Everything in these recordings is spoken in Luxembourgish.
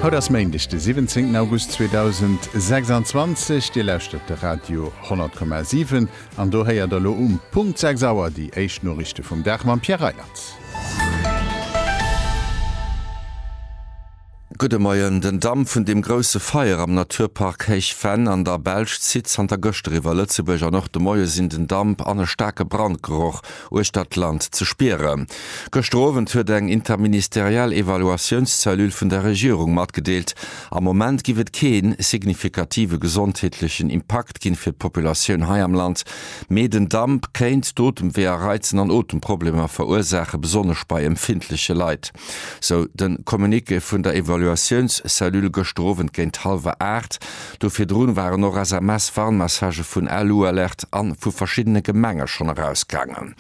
Haut ass Méindeg de 17 August 2026, Dir lauschtert de Radio 10,7 an do héiert der elo um Punkt 6 Auer déi éischt Noriichte vum Dag mam Pierre Reiland. Gudde Moien, Den Damp vun dem grousse Feier am Naturpark Héich Venn an der Belsch zitt zanter gëschter iwwer Lëtzebuerg an och de Moie sinn den Damp an e staarke Brandgeroch uechter d'Land ze spieren. Gëschter Owend huet eng interministeriell Evaluatiounszellule vun der Regierung matgedeelt, am Moment giff et kee signifikative gesondheetlechen Impakt ginn fir d'Populatioun hei am Land, mee den Damp kéint d'Otemwee a Reizen an Otemproblemer verursaachen, besonnesch bei empfindleche Leit. sou de Communiqué vun der Evaluatiounscellule gëschter Owend géint hallwer aacht. Do virdru waren och SMS-Warnmessagë vun Alualert a vu verschiddene Gemenge schonn erausgaangen.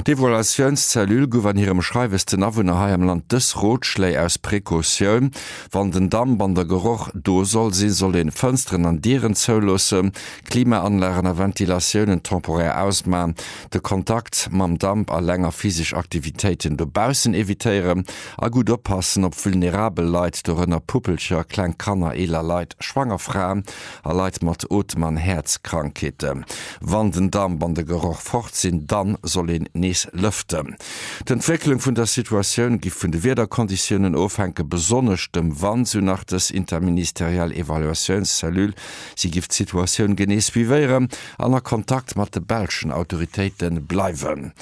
D'Evaluatiounscellule guff an hirem Schreiwes den Awunner hei am Land dës Rotschléi aus Precautioun, Wann den Damp an der Geroch do soll sinn, sollt een Fënsteren an Dieren zouloossen, Klimaanlagen a Ventilatiounen temporär ausman, de Kontakt mam Damp a länger physesch Aktivitéiten dobaussen evitéieren a gutt oppassen op vulnerabel Leit, dorënner Puppelcher, kleng Kanner, eeler Leit, schwanger Fraen a Leit mat Otem an Häerzkrankheeten. Wann den Damp an de Geroch fort sinn, dann soll een nees lëften. D'Entwécklung vun der Situatioun gi vun de Wiederkonditiounen ofhänken, besonnesch dem Wand, sou nach dës interministeriell Evaluatiounscellule. Si giff d'Situatioun genee suivéieren. an a Kontakt mat de belschen Autoritéite bleiwen.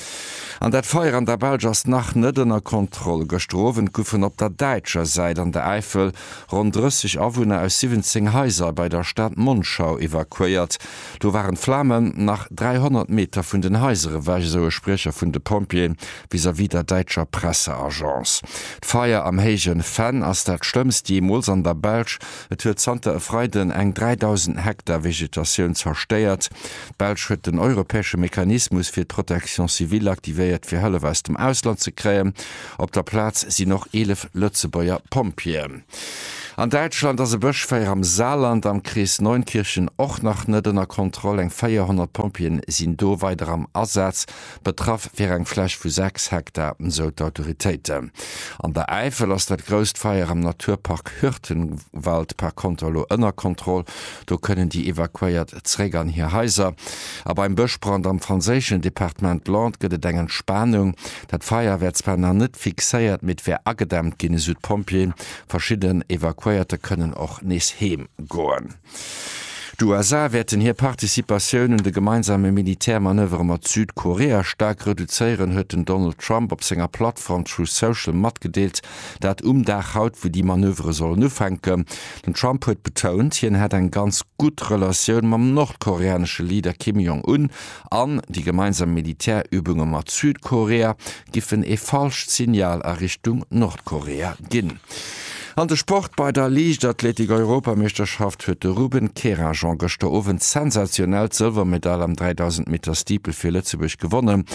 An dat Feier an der Belsch ass nach net ënner Kontroll. Gëschter Owend goufen op der däitscher Säit an der Äifel ronn 30 Awunner aus 17 Haiser bei der Stad Monschau evakuéiert. Do waren d'Flamen nach 300 Meter vun den Haiser ewech, esou e Spriecher vun de Pompjeeë vis-à-vis der däitscher Presseagence. D'Feier am Héije Venn ass dat schlëmmst jeemools an der Belsch Et huet zanter e Freiden eng 3.000 Hektar Vegetatioun zerstéiert. D'Belsch huet den europäesche Mechanismus fir d'Protection civile aktivéiert, fir Hëllef aus dem Ausland ze kréien. Op der Plaz sinn och 11 Lëtzebuerger Pompjeeën. An Däitschland ass e Bëschfeier am Saarland am Krees Neunkirchen och nach net ënner Kontroll. Eng 400 Pompjeeën sinn do weider am Asaz. Betraff wier eng Fläch vu 6 Hektar, sou d'Autoritéiten. An der Äifel ass dat grousst Feier am Naturpark Hürtgenwald par konter elo ënner Kontroll. Do kënnen déi Evakuéiert zeréck an hir Haiser. A beim Bëschbrand am franséischen Departement Landes gëtt et eng Entspanung. Dat Feier wär zwar nach net fixéiert, mee et wär agedämmt ginn, esou d'Pompjeeën. Verschidden Evakuéierte kënnen och nees heem goen. D'USA wäerten hir Participatioun un de gemeinsame Militärmanövere mat Südkorea staark reduzéieren, huet den Donald Trump op senger Plattform Truth Social matgedeelt. Dat um Dag haut, wou déi Manövere sollen ufänken. Den Trump huet betount, hien hätt eng ganz gutt Relatioun mam nordkoreanesche Leader Kim Jong Un an déi gemeinsam Militärübunge mat Südkorea giffen ee falscht Signal a Richtung Nordkorea ginn. An de Sport, Bei der Liichtathletik-Europameeschterschaft huet de Ruben Kerajan gëschter Owend sensationell d'Sëlwermedail am 3000 Meter Steeple fir Lëtzebuerg gewonnen.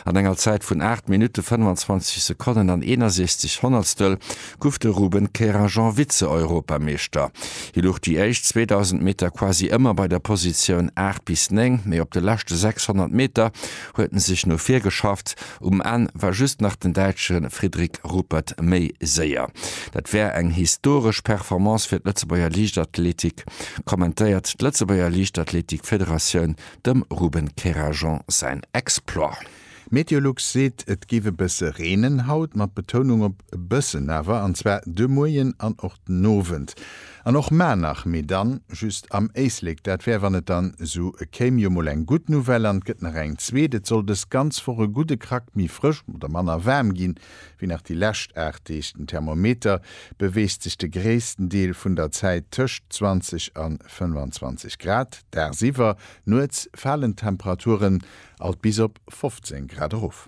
An enger Zäit vun 8 Minutte 25 Sekonnen an 61 Honnertstel gouf de Ruben Kerajan Vize-Europameeschter. Hie luch déi éischt 2000 Meter quasi ëmmer bei der Positioun 8 bis 9, mee op de leschte 600 Meter huet en sech no vir geschafft Um Enn war just nach den Däitsche Fridrik Ruppert méi séier. Dat wär eng historesch Performance fir d'Lëtzebuerger Liichtathletik, kommentéiert d'Lëtzebuerger Liichtathletik-Federatioun dem Ruben Kerajan säin Exploit. Meteolux seet, et géif e bësse reenen haut, mat Betounung op e bëssen awer, an zwar de Moien an och den Owend. An och maer nach, mee dann just am Éislek. Dat wär wann et dann sou kéim. Jo mol eng gudd Nouvelle an et gëtt nach eng zweet. Et soll dës ganz Woch e gudde Krack méi frësch oder manner waarm ginn wéi nach déi lescht 8 Deeg. Den Thermometer beweegt sech de gréissten Deel vun der Zäit tëscht 20 an 25 Grad dagsiwwer. Nuets falen d'Temperaturen alt bis op 15 Grad erof.